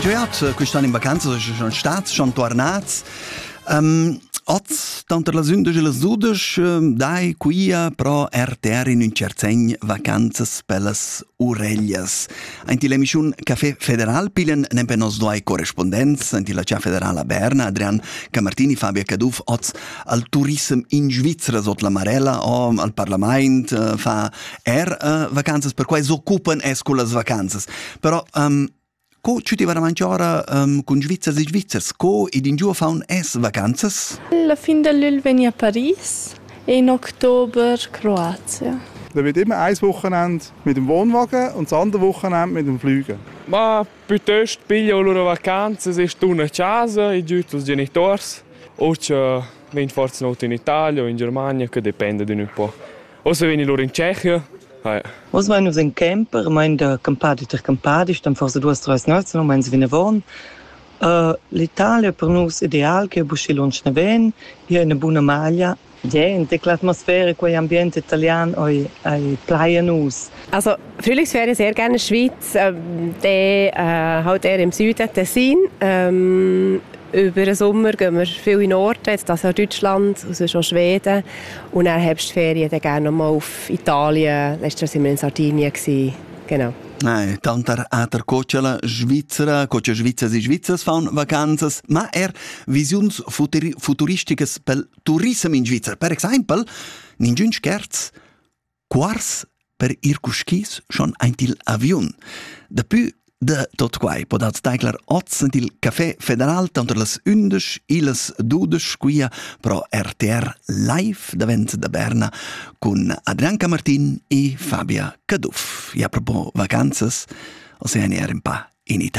Jeu hat eh, quest'ann in vacanza, che schon stats, schon tornats. Um, oz, tanter las undici e las dudici, ehm, dai quia pro RTR in un cert segn vacanzas per las Urellas. Anti l'emissiun Café Federal pilen nempe nos doi correspondents, anti la Cia Federala Berna, Adrian Camartini, Fabio Caduff, oz al turism in Svizzera sot la Marella o al Parlament, eh, fa Er uh, vacanzas per quai s'occupan es cullas vacanzas. Però um, co ci ti va davanti ora um, con Svizzers e Svizzers? Co ed in giù faun es vacanzas? La fin dell'il veni a Paris e in Oktober Kroatien. Dann wird immer ein Wochenende mit dem Wohnwagen und das andere Wochenende mit dem Fliegen. Ma piuttosto piglio loro vacanze, se stuna a casa, i giù i genitori, o c'è ven forse not in Italia o in Germania, che dipende d'un po'. Ossa vegni lur in Tschechia. Hai. Oz mein nus in camper, mein da campadi ter campadi, stam forse duas treis nalzno, meins vinavon. Uh, L'Italia per nus ideal che buschi lunsch ne ven, è una buona maglia. Yeah, in tecla atmosfera, quei ambiente italian oi, ai plaia nus. Also, natürlich wäre ich sehr gerne in der Schweiz. Ähm, der äh, halt eher im Süden Tessin. Ähm, über den Sommer gehen wir viel in den Norden, jetzt das auch Deutschland, sonst auch Schweden. Und dann Herbstferien dann gerne nochmal auf Italien. Letztes Jahr waren wir in Sardinien. Gewesen. Genau. Nein, tanter hat er cocciala Svizzera, coccia Svizzers e Svizzers fan vacanzas, ma er visiuns futuristiches pel turism in Svizzera. Per exempel, ningün scherz, Quars per ir cuschis schon aint il aviun. Dapü da tot quai podats taglar oz ed il Café Federal tanter las undisch e las dudesch quia pro RTR Live davent da Berna cun Adrian Camartin e Fabia Caduff. E a propos vacanzas, Oceania er un pa in Italia.